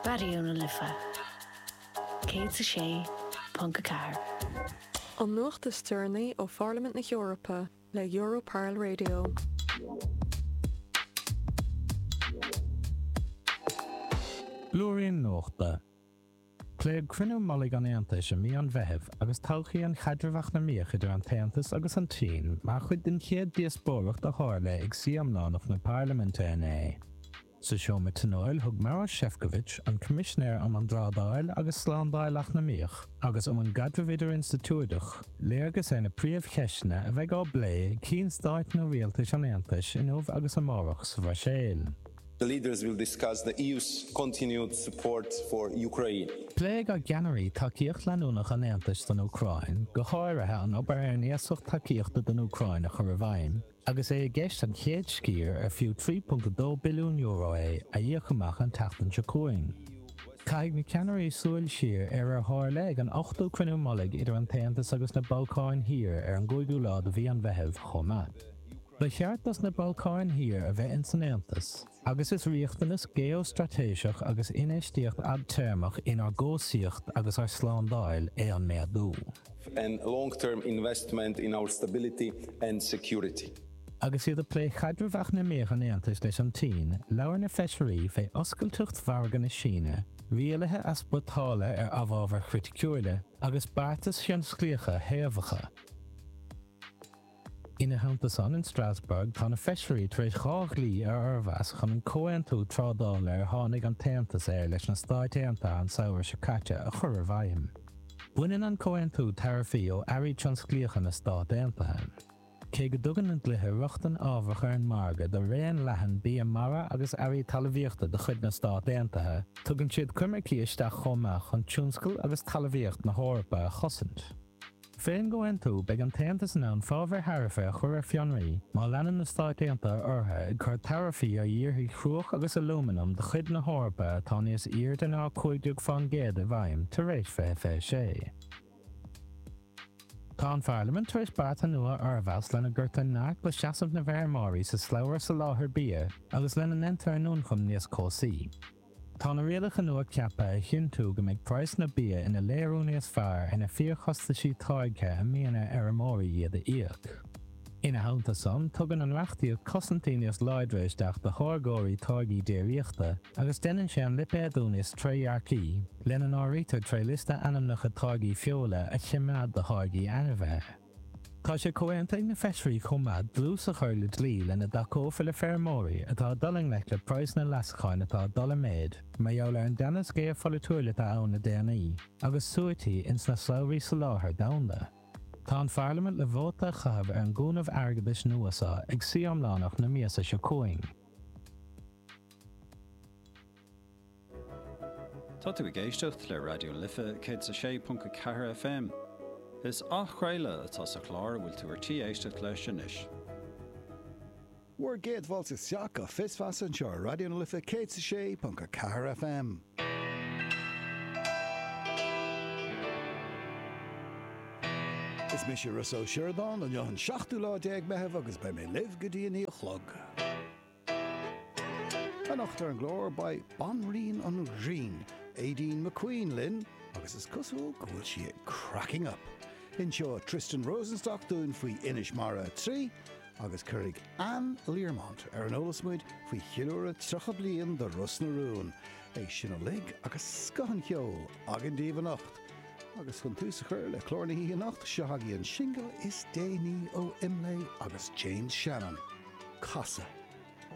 Raidió na Life 106.4. An nuacht is deireanaí ó Pharlaimint na hEorpa le Europarl Radio. Blúirín Nuachta. Pléadh cruinniú mullaigh an Aontais i mí an Mheithimh agus todhchaí an chaidrimh eacnamaíoch idir an tAontas agus an tSín mar chuid den chéad díospóireacht a tharla ag suí iomlánach na Parlaiminte inné. Sa seomra tionóil thug Maros Sefcovic, an Coimisinéir um an dTrádáil agus Slándáil Eacnamaíoch agus um an gCaidreamh Idirinstitiúideach, léargas ar na príomhcheisteanna a bheidh á bplé ag Cinn Stáit nó Rialtais an Aontais inniu agus amárach sa Bhruiséil. The leaders will discuss the EU's continued support for Ukraine. Pléifidh ár gceannairí tacaíocht leanúnach an Aontais don Úcráin, go háirithe an obair ar an iasacht tacaíochta don Úcráin a chur i bhfeidhm, agus é i gceist an chéad sciar, ar fiú €3.2 billiún é, a dh'íoc amach an tseachtain seo chugainn. Caithfidh na ceannairí súil siar ar ar tharla ag an ochtú cruinniú mullaigh idir an tAontas agus na Balcáin Thiar ar an gcúigiú lá de mhí an Mheithimh chomh maith. Ba cheart dos na Balcáin Thiar a bheith ins an Aontas agus is riachtanas geostraitéiseach agus infheistíocht fhadtéarmach inár gcobhsaíocht agus ár slándáil é an méadú. and long-term investment in our stability and security. Agus iad ag plé chaidreamh eacnamaíoch an Aontais leis an tSín, labhair na feisirí fé oscailteacht mhargadh na Síne, rialuithe easpórtála ar amhábhair chriticiúila agus beartais thionsclaíocha shaobhacha. Ina theannta san, in Strasbourg tá na feisirí tar éis dhá dhlí a fhormheas chun an comhaontú trádála ar tháinig an tAontas air leis na Stáit Aontaithe an samhradh seo caite a chur i bhfeidhm. Baineann an comhaontú taraifí ó earraí tionsclaíocha na Stát Aontaithe. Cé go dtugann na dlíthe rochtain ábharach ar an margadh do raon leathan bia mara agus earraí talmhaíochta de chuid na Stát Aontaithe, tugann siad coimircí isteach chomh maith chun tionscal agus talmhaíocht na hEorpa a chosaint. Faoin gcomhaontú, beidh an tAontas in ann fábhair tharaife a chur ar fionraí má leanann na Stáit Aontaithe orthu ag cur taraifí ar dhíorthaigh chruach agus alúmanaim de chuid na hEorpa atá níos airde ná 15 fán gcéad i bhfeidhm tar éis 2026. Tá an Pharlaimint tar éis bearta nua a fhormheas lena gcuirtear neart le seasamh na bhfeirmeoirí sa slabhra soláthair bia agus lena ndéantar a n-ioncaim níos cobhsaí. Tá na rialacha nua ceaptha a chinntiú go mbeidh praghsanna bia ina léiriú níos fearr ar na fíorchostais táirgthe a mbíonn ar fheirmeoirí iad a íoc. Ina theannta san, tugann an reachtaíocht cosaintí níos láidre isteach do tháirgeoirí táirgí déiríochta agus deineann sé an lipéadú níos trédhearcaí, lena n-áirítear tré liosta ainmneacha táirgí feola a choimeád do tháirgí ainmhithe. Tá sé comhaontaithe ag na Feisirí chomh maith dlús a chur le dlí lena dtacófar le feirmeoirí atá ag dul i ngleic le praghsanna leasacháin atá ag dul i méad mar gheall ar an dteannas géarpholaitiúil atá ann le déanaí agus suaití ins na slabhraí soláthair domhanda. Tá an Pharlaimint le vóta a chaitheamh ar an gcúnamh airgeadais nua seo ag suí iomlánach na míosa seo chugainn. Tá tú ag éisteacht le Raidió na Life 106.4 FM. Is athchraoladh atá sa chlár a bhfuil tú ar tí éisteacht leis anois. Bhur gcéad fáilte isteach go Fios Feasa anseo ar Raidió na Life 106.4 FM. Is mise Rossa Ó Sioradáin, inniu an seachtú lá déag Meitheamh agus beidh mé libh go dtí a naoi a chlog. Anocht ar an gclár beidh banríon an ghrinn, Aideen McQueen linn agus is cosúil go bhfuil sí ag cracking up! Inseoidh Tristan Rosenstock dúinn faoi Inis Mara 3 agus cuirfidh Anne Learmont ar an eolas muid faoi cheiliúradh 30 bliain de Ros na Rún. É sin uilig agus scoth an cheoil againn daoibh anocht! Agus chun tús a chur le clár na hoíche anocht, seo agaibh an singil is déanaí ó Imlé agus James Shannon, 'Casadh'.